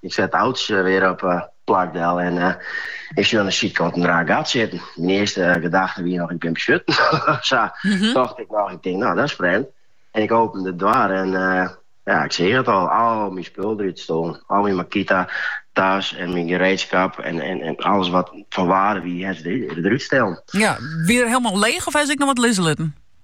Ik set auto wer op plak del en ik sjoch de sydkant in raar gat sitten. Myn earste gedachte wie noch ik bin besjutten. Sa tocht ik noch, ik tink no dat is frjemd. En ik open de doar en ja, ik seach it al, al myn spul derút stolen. Al myn Makita tas en myn gereedskap en, en, en alles wat fan waarde wie, is derút stellen. Ja, wie er hielemaal leech of hie se ek noch wat lizze litten?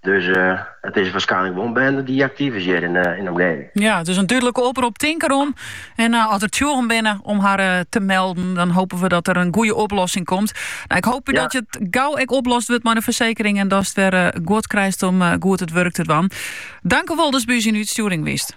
Dus it is warskynlik wol in binde dy't aktyf is hjir yn de omgeving. Ja, it is in dúdlike oprop, tink derom. En as der tsjûgen binne om har te melden, dan hopen we dat der in goede oplossing komt. No, ik hoop dat it gau ek oplost wurdt mei de fersekering en datst wer guod krijst om goed it wurk te dwaan. Dankewol datst by ús yn útstjoering wiest.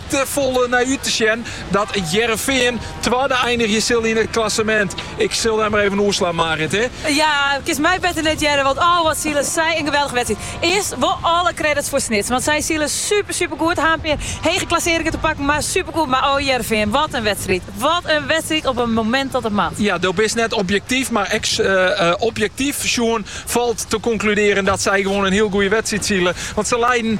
te folle nei út te sjen dat Hearrenfean twadde einigje sil yn it klassemint. Ik sil dy mar even oerslaan, Marit, hè? Ja, kinst my better net hearre, want oh wat sile sy in geweldige wedstriid. Earst wol alle credits foar Snits, want sy sile super super goed. Ha in pear hege klassearringen te pakken, mar super goed. Mar oh Hearrenfean, wat in wedstriid! Wat in wedstriid op in momint dat it moat. Ja, do bist net objektyf, mar ek objektyf sjoen falt te konkludearjen dat sy gewoan in hiel goede wedstriid sile, want se leiden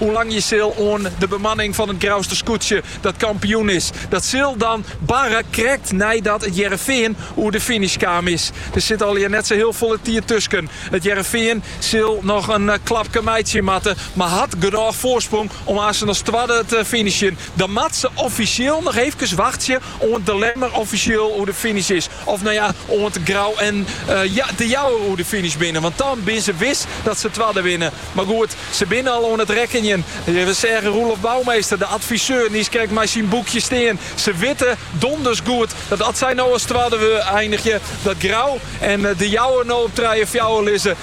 Oerlangje sil oan de bemanning fan it Grouster skûtsje dat kampioen is. Dat sil dan barre krekt neidat it Hearrenfean oer de finish kaam is. Der sit allegear net sa hiel folle tiid tusken. It Hearrenfean sil noch in klapke meitsje moatte, mar hat genôch foarsprong om as as twadde te finishjen. Dan moatte se offisjeel noch eefkes wachtsje oant De Lemmer offisjeel oer de finish is. Of no ja, oant Grou en De Jouwer oer de finish binne. Want dan binne se wis dat se twadde winne. Mar goed, se binne al oan it rekkenjen. We seagen Roelof Bouwmeester, de adviseur, nyskrekt mei syn boekje stean. Se witte donders goed dat as sy no as twadde einigje, dat Grou en De Jouwer no op trije en fjouwer lizze.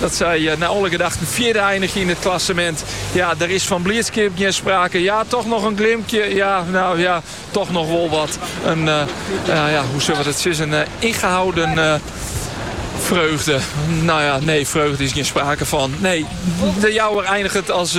Dat sy nei alle gedachten fjirde einigje yn it klassemint. Ja, der is fan bliidskip gjin sprake. Ja, toch noch in glimkje. Ja, no ja, toch noch wol wat. In, eh, ja, hoe sille we dat sizze? In eh, ingehouden eh, freugde. No ja, nee, freugde is gjin sprake fan. Nee, De Jouwer einiget as